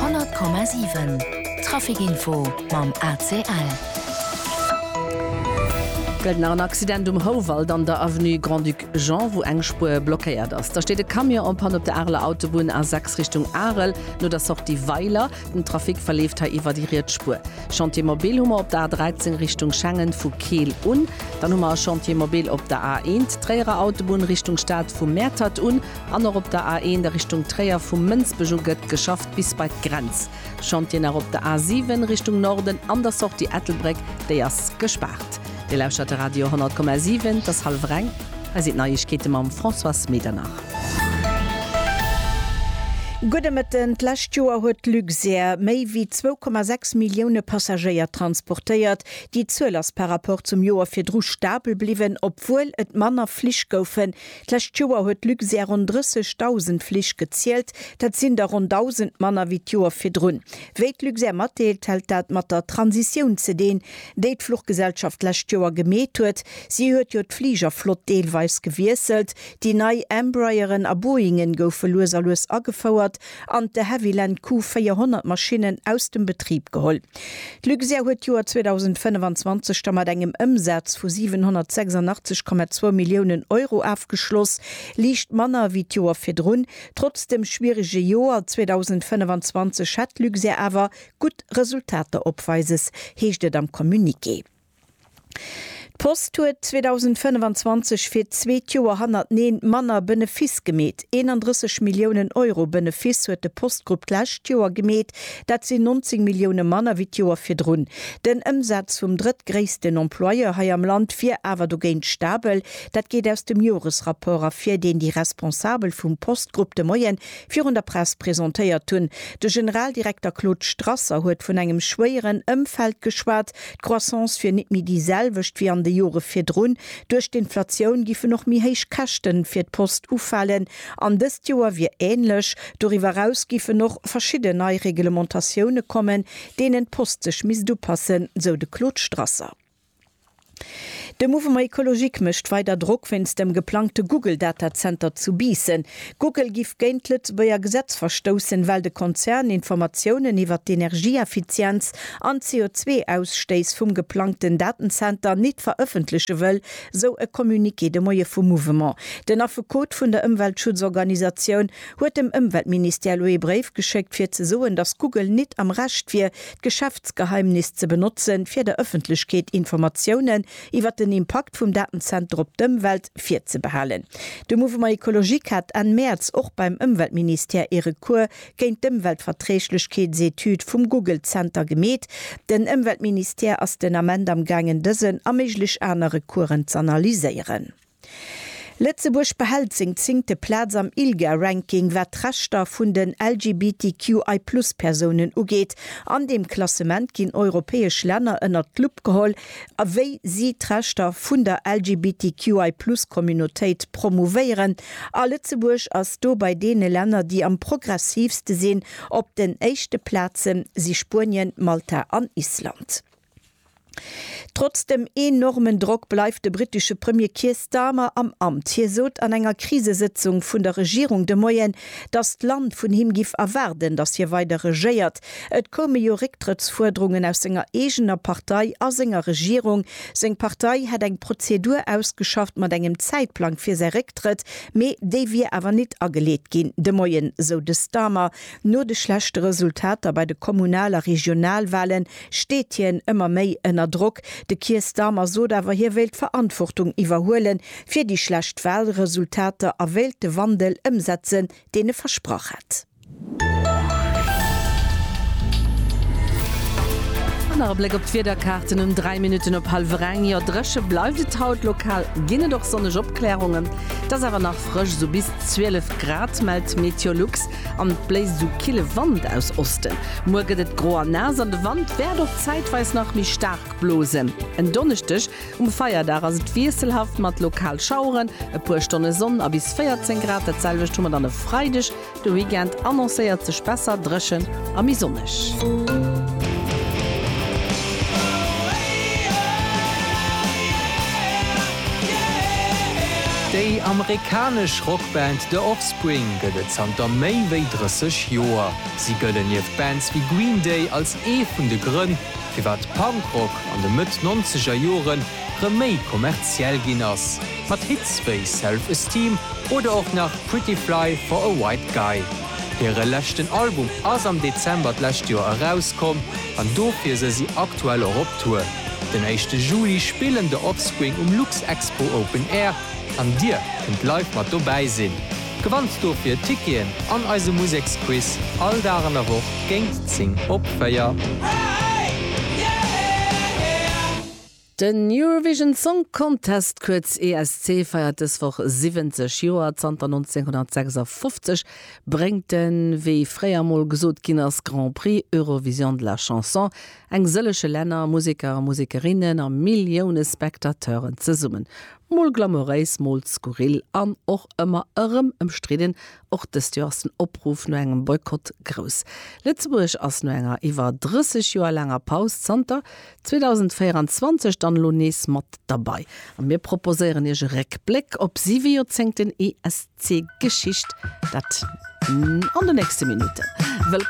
Honnert Komma siwen, Trafikinfo mam ACL. Gëllt nach en Accident um Houwald an der Avenue Grand-Duc Jean, wou eng Spuer blockéiert ass. Da steet e Camion en panne op der Areler Autobunn, A6 Richtung Arel, no der Sortie Weiler. Den Trafic verleeft hei iwwer déi riets Spuer. Chantier mobil hu mer op der A13 Richtung Schengen vu Keel un. Dann hu mer e Chantier mobil op der A1 Tréierer Autobunn Richtung Stad vu Mäertert un. An och op der A1 a Richtung Tréier, vu Mënsbech u gëtt geschafft bis bei d'Grenz. Chantieren nach op der A7 Richtung Norden an der Sortie Ettelbréck, déi ass gespaart. Dir lauschtert de Radio 10,7, et ass hallef reng. Hei sinn d'Neiegkeete mam Françoise Medernach. Gudde Mëtten, D'lescht Joer huet d'Luxair méi wéi 2,6 Millioune Passagéier transportéiert. Déi Zuel ass par Rapport zum Joer virdru stabel bliwwen, obwuel et manner Flich goufen, D'lescht Joer huet Luxair ronn 30.000 Flich gezielt. Dat sinn der ronn 1.000 manner wéi d'Joer virdrun. Wéi d'Luxair matdeelt, hält dat mat der Transitioun ze deen, déi d'Fluchgesellschaft d'lescht Joer gemeet huet. Si huet jo d'Fligerflott deelweis gewiesselt. Déi nei Embrayeren a Boeingen goufe lues a lues agefouert an de Havilland Q 400 Maschinnen aus dem Betrib geholl. D'Luxair huet d'Joer 2025 da mat engem Ëmsaz vu 786,2 Milliounen Euro afgeschloss, liicht manner wéi d'Joer virdrun. Trotz dem schwierege Joer 2025 hätt d'Luxair awer gutt Resultater opweises, heescht et am Communiqué. D'Post huet 2025 fir d'zweet Joer hannerteneen manner Benefiss gemeet. 31 Milliounen Euro Benefiss huet de Postgrupp d'lescht Joer gemeet, dat sinn 19 Millioune manner wéi d'Joer virdrun. Den Ëmsaz vum drëttgréissten Employeur hei am Land wier awer dogéint stabel. Dat geet aus dem Joresrapport ervir, deen déi Responsabel vum Postgrupp de Moie virun der Press presentéiert hunn. De Generaldirekter Claude Strasser huet vun engem schwéieren Ëmfeld geschwat, D'Croissance wier nit méi déi selwecht wéi an de Jore virdrun. Duerch d'Inflatioun giffen och méi héich Käschte fir d'Post ufalen an dëst Joer wier änlech. Doriwwer eraus giffen och verschidden nei Reglementatioune kommen, deenen d'Post sech misst upassen, sou de Claude Strasser. De Mouvement Ecologique mécht weider Drock wéinst dem geplangte Google-Datazenter zu Biissen. Google giff géint d'Lëtzebuerger Gesetz verstoussen, well de Konzern Informatiounen iwwert d'Energieeffizienz an d'CO2-Ausstéiss vum geplangten Datenzenter nit verëffentleche wëll, sou e Communiqué de Moie vum Mouvement. Den Affekot vun der Ëmweltschutzorganisatioun huet dem Ëmweltministère elo ee Bréif geschéckt, fir ze soen, datt Google nit am Recht wier, d'Geschäftsgeheimnis ze benotze fir der Ëffentlechkeet Informatiounen, iwwert den Impakt vum Datenzenter op d'Ëmwelt virzebehalen. De Mouvement Ecologique hat Enn Mäerz och beim Ëmweltministère ee Recours géint d'Ëmweltverträglechkeetsetüd vum Google-Zenter gemeet. Den Ëmweltministère ass den Ament amgaangen dësen a méiglech aner Recoursen z'analyséieren. Lëtzebuerg behält seng zéngte Plaz am ILGA-Ranking, wat d'Rechter vun den LGBTQI-Plus-Persounen ugeet. An deem Klassement ginn europäesch Länner ënnert d'Lupp geholl, wéi si d'Rechter vun der LGBTQI-Plus-Communautéit promouvéieren. A Lëtzebuerg ass do bei deene Länner, déi am progressiivste sinn. Op den éischte Plaze si Spuenien, Malta an Island. Trotz dem enormen Drock bleift de brittesche Premier Keir Starmer am Amt. Hie sot an enger Krisesëtzung vun der Regierung de Moien, datt d'Land vun him giff erwaarden, datt hie weider regéiert. Et koume jo Récktrëttsfuerderungen aus senger eegener Partei a senger Regierung. Seng Partei hätt eng Prozedur ausgeschafft mat engem Zäitplang fir säi Récktrëtt, mee déi wier awer nit ageleet ginn de Moien, sou de Starmer. No de schlechte Resultater bei de Kommunal a Regionalwahle steet hien ëmmer méi ënner Drock. De Keir Starmer sot awer, hie wéilt d'Verantwortung iwwerhuele fir déi schlecht Wahlresultater a wéilt de Wandel ëmsetzen, deen e versprach hätt. An nach e Bléck op d'Wiederkaarten um 3 Minutten op hallwer eng. Jo, dréche bleift et haut, lokal ginn et och sonneg Opklärungen. Et ass awer nach frësch, sou bis 12 Grad, mellt Meteolux. An et bléist esou kille Wand aus Osten. Muer gëtt et gro a naass an de Wand wäert och zäitweis nach méi staark blosen. En Donneschdeg um Feierdag ass et wiesselhaft mat lokal Schaueren, e puer Stonne Sonn a bis 14 Grad. Dat selwecht hu mer dann e Freideg. De Weekend annoncéiert sech besser dréchen a méi sonneg. Déi amerikanesch Rockband The Offspring huet 2023 Spring gëtt et zanter méi wéi 30 Joer. Si gëllen nieft Bands wéi Green Day als ee vun de Grënn, firwat Punkrock an de Mëtt-Nonzeger Jore rëm méi kommerziell ginn ass, mat Hits wéi Self Esteem oder och nach Pretty Fly for a White Guy. Hire leschten Album ass am Dezember d'lescht Joer erauskomm an dofir se si aktuell och op Tour. Den éischte Juli spillen The Offspring um Luxexpo Open Air An dir kënnt live mat dobäi sinn? Gewannt dofir Ticketen an eise Museksquiz all Dag an der Woch géint 10 op 4. Den Eurovision Song Contest, kuerz ESC, feiert dës Woch 70 Joer. Zanter 1956 bréngt en, wéi fréier mol gesot ginn ass, Grand Prix Eurovision de la Chanson Eng sëlleche Länner, Museker a Musekerinnen a Millioune Spectateuren zesummen. Mol glamouréis, mol skurril an och ëmmer erëm ëmstridden. Och dëst Joer ass den Opruff no engem Boykott grouss. Lëtzebuerg ass no enger iwwer 30 Joer laanger Paus zanter 2024 dann elo nees mat derbei. A mir proposéieren Iech e Réckbléck op siwe Joerzéngten ESC-Geschicht. Dat an de nächste Minutten.